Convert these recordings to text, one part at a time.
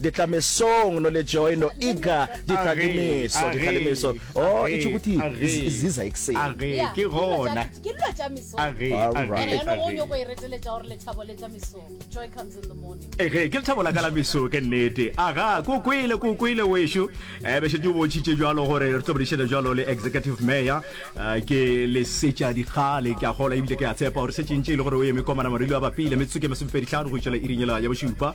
Di tla mesong, no le joy, no eager, di tla le meso, di tla le meso. Oh, e tšho kuti ziza ekuseni. A re, ke gona. Ke dilo tša mesong. A re, a re. Ene yone go nyoko e reteletša gore lethabo le tla mesong. Joy comes in the morning. E re, ke lethabo la ka la meso, ke nnete. A ga, ke o kwele, ke o kwele wešo. E be šetše o bontšhitše bjalo gore re tlo bodišana bjalo le Executive Mayor. Ke le setša dikgale, ke a kgolwa ebile ke a tshepa gore se tšentše e le gore o eme komana marilo a bapile metsotso ke masomepedi hlano go itšela iring yela ya bošupa.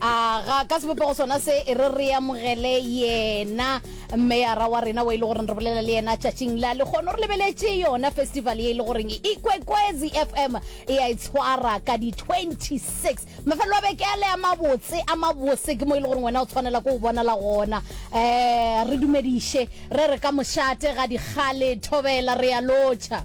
a ga ka sebopego sona se e re re amogele yena mmeyara wa rena wa e le goreng re bolela le yena tšatšing la lekgono re lebeletše yona festival ye e le goreng e kwekwezi fm e a e tshwara ka di-26 mafelelo a beke a le a mabotse a mabose ke mo e le goreng wena o tshwanela ko o bonala gona um re dumediše re re ka mošate ga dikgale thobela re a lotšha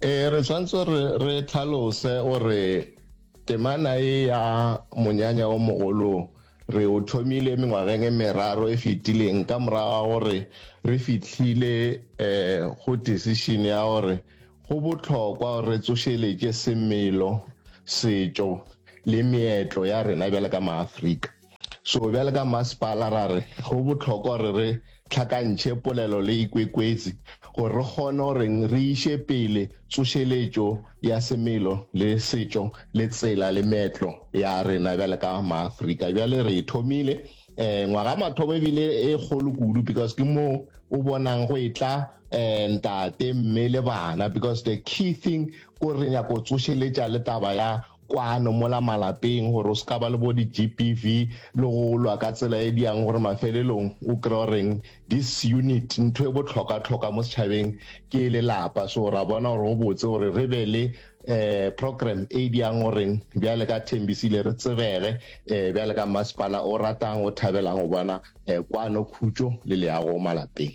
e re tshwanetse re re tlhalose gore temana e ya monyanya o mogolo re o thomile mengwageng e meraro e fetileng ka moraga gore re fitlhile um go decision ya gore go botlhokwa gore re tsošeletše semelo setšo le meetlo ya rena bjale ka maaforika So bjale ka Mmasepala ra re go bohlokwa gore re hlakantšhe polelo le ikwekweetsi gore re kgone gore re iše pele tsošeletšo ya semelo le setšo le tsela le meetlo ya rena bjale ka Maafrika. Bjale re e thomile um ngwaga mathomo ebile e kgolo kudu because ke moo o bonang go e tla um ntate mme le bana because the key thing ko re nyako tsošeletša le taba ya kwano mola malapeng gore o se ka ba le bo di-GBV le go lwa ka tsela e diang gore mafelelong o kry goreng this unit ntho e botlhoka-tlhoka mo setšhabeng ke e lelapa so ra bona gore go botse gore re be le um program e diang goreng bjale ka thembisile re tsebege um bjale ka masepala o ratang o thabelang go bona um kwano khutšo le leago malapeng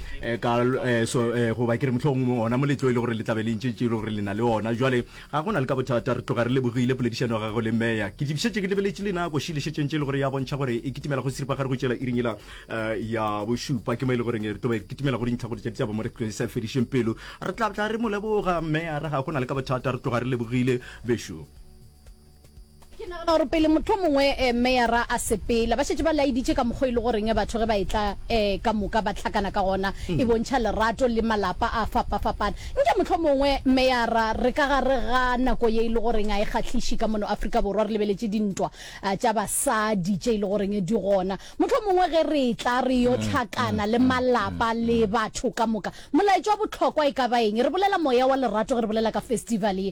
Eh, ka eh, so eh, goba ke re motlhong ona moletlo e le gore le tlabe le ntšetše e le gore le na le ona jale ga go na le ka bothata re tloga re lebogile poledišano ga go le meya ke dibišetše ke lebeletše le nako šilešetseng tše e le gore ya bontšha gore e kitimela go siripa ga re go tšela iringela ya bošupa ke mo e le goreng re tobe re kitimela go dintlha gore tša ditaba mo re tlo sa fedišeng pelo re tla tla re mo leboga meya re ga go na le ka bothata re tloga re lebogile bešo Ke nagana gore pele mohlomongwe eh, meyara a sepela ba šetše ba laeditše ka mokgwa e le goreng eh, batho ge ba etla eh, ka moka ba hlakana ka gona mm. e bontšha lerato le malapa a fapafapana nke mohlomongwe meyara re ka gare ga nako ye e le goreng a e kgahliše ka mono afrika borwa re lebeletše dintwa ah, tša basadi tše e le goreng eh, di gona mohlomongwe ge re tla re yo mm, tlhakana mm, le malapa le batho ka moka molaetšo wa bohlokwa e ka ba eng re bolela moya wa lerato ge re bolela ka festival ye